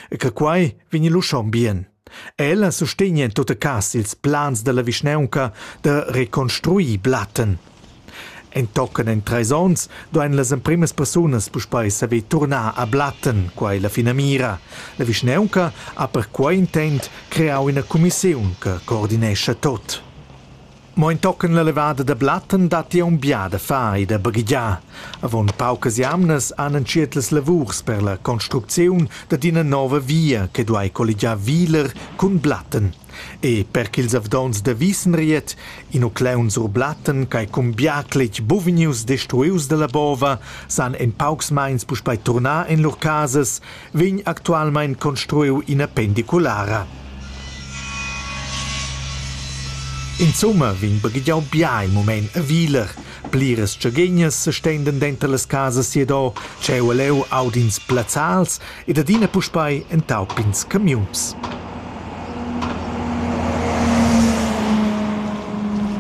e che quai vegni lu schon bien. Ella sustegna en tutta cas ils plans dalla vischnaunca da reconstruir Blatten. Entochen en treis onns duein las emprimas persunas puspei saver turnar a Blatten, quai la finamira. La vischnaunca ha per quei intent creau ina cumissiun che coordinescha tot. Mo entochen la levada da Blatten datti aunc da far e da baghegiar. Avon paucas jamnas han entschiet las lavurs per la construcziun dad ina nova via che duai colligiar Wiler cun Blatten. E per ch'ils avdonts da Wisenried, inucleun sur Blatten ch'ei cumbiacletg buvgnius destruius dalla bova, san en paucs meins puspei turnar en lur casas vegn actualmein construiu ina pendiculara. Insomma vegn baghegiau bia in mument a Wieler. Pliras tschaghegnas sestenden denter las casas siadò, tscheu e leu audins plazzals ed adina puspei entau pins camiuns.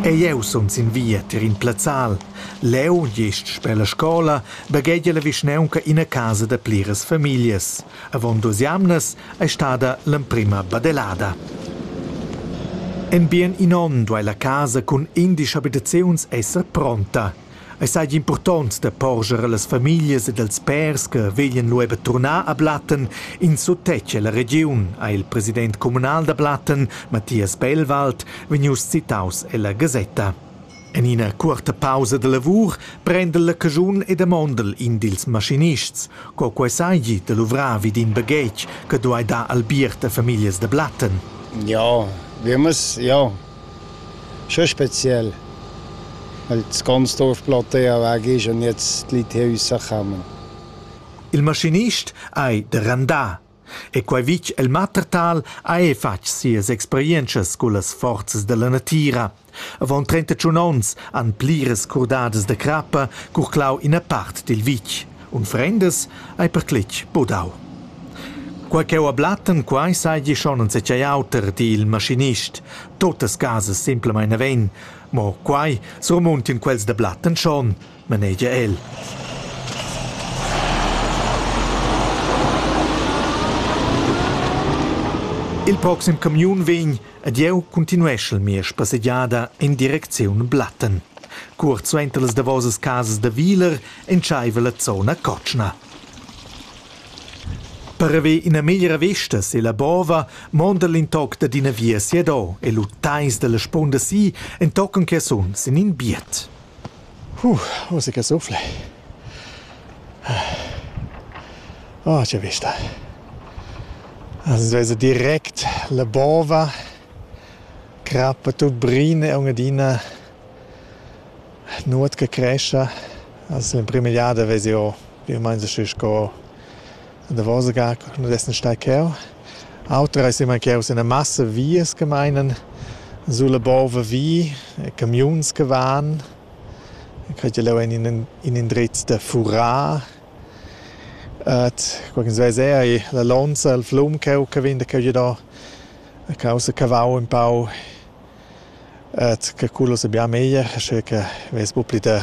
E jeu sun sin via tier in plazzal. Leu, gest sper la scola, baghegia la vischnaunca ina casa da pliras famiglias. Avon duas jamnas ei stada l'emprema badelada. En bien in onn duei la casa cun indisch abitaziuns esser pronta. Ei seigi impurtont da porscher allas famiglias ed als pèrs che veglan lu eber turnar a Blatten in suttetg ella regiun, ha il president communal da Blatten, Matthias Bellwald, vegnius citaus ella gasetta. En ina cuorta pausa da lavur prendel la caschun e damondel in dils maschinists, co quei seigi da luvrar vid in baghetg che duei dar albiert a famiglias da Blatten. Ja, viemas, ja. Schon speziell. Weil das ganze Dorf Platte ja weg ist und jetzt die Leute hier rauskommen. Il maschinist ei da randar E quei vitg el Mattertal ha era fatg sias experientschas cullas forzas dalla natira. Avon trentatschun onns han pliras curdadas da crappa curclau ina part dil vitg. Unfrendas ei perclitg budau. Quei cheu a Blatten, quei seigi schon enzatgei auter, di il maschinist. Totas casas semplamein naven, mo quei surmuntin quels da Blatten schon. manegia el. Il proxim camiun vegn ed jeu continueschel mia spassegiada in direcziun Blatten. Cuort suenter las davosas casas da Wieler entscheiva la zona cotschna. Per haver ina meglra vesta sella bova monda l'intoc dad ina via siadò e lu teis dalla spunda si entochen che suns in in biet. Musica sufla. Oh, che vista. As vesa direct la bova, crappa tut brina e un'adina nuot che crescha. As l'emprima jada vesi o, più o meins scu sco davos ga quando essen stai cheu. Auter ei semancaus ina massa vias che meinen sulla bova vi, camiuns che van. Quei che leu ein in in indrez da furar. Et qualchens veis era ei la lonza, il flum cheu che vegn da cheu giador. A causa cavau un pau. Et che quello sabia meglier, sche che vess buca pli da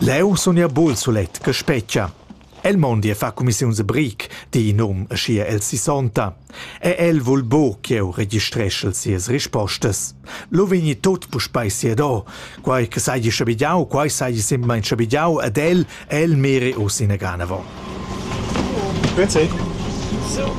Leu sun jeu buc sulet che spetga. El mondi e fa cumissiuns e bric, di in um aschia el sissonta. E el vul buc ch'jeu registreschel sias rispostas. Lu vegni tut puspei siado. Quei che seigi schabigiau, quei seigi semplamein schabigiau ed el, el miri uss ina ganavon. Grüezi. So.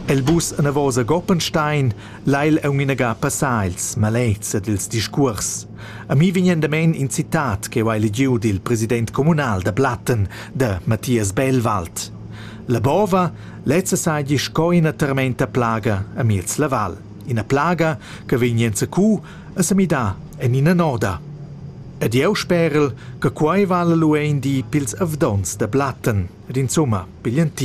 El bus anavos a Goppenstein, Lai el aunc inaga passar ils malets ed ils discuors. A mi vegnan damein in citat ch'jeu hai legiu dil president communal da Platten, da Mathias Bellwald. La bova lezza seigi sco ina termenta plaga a miez la val, ina plaga che vegn enzacu a semidar en ina noda. Ed jeu sperel che quei vala lu in di pils avdonts da Platten ed insumma pigl entir.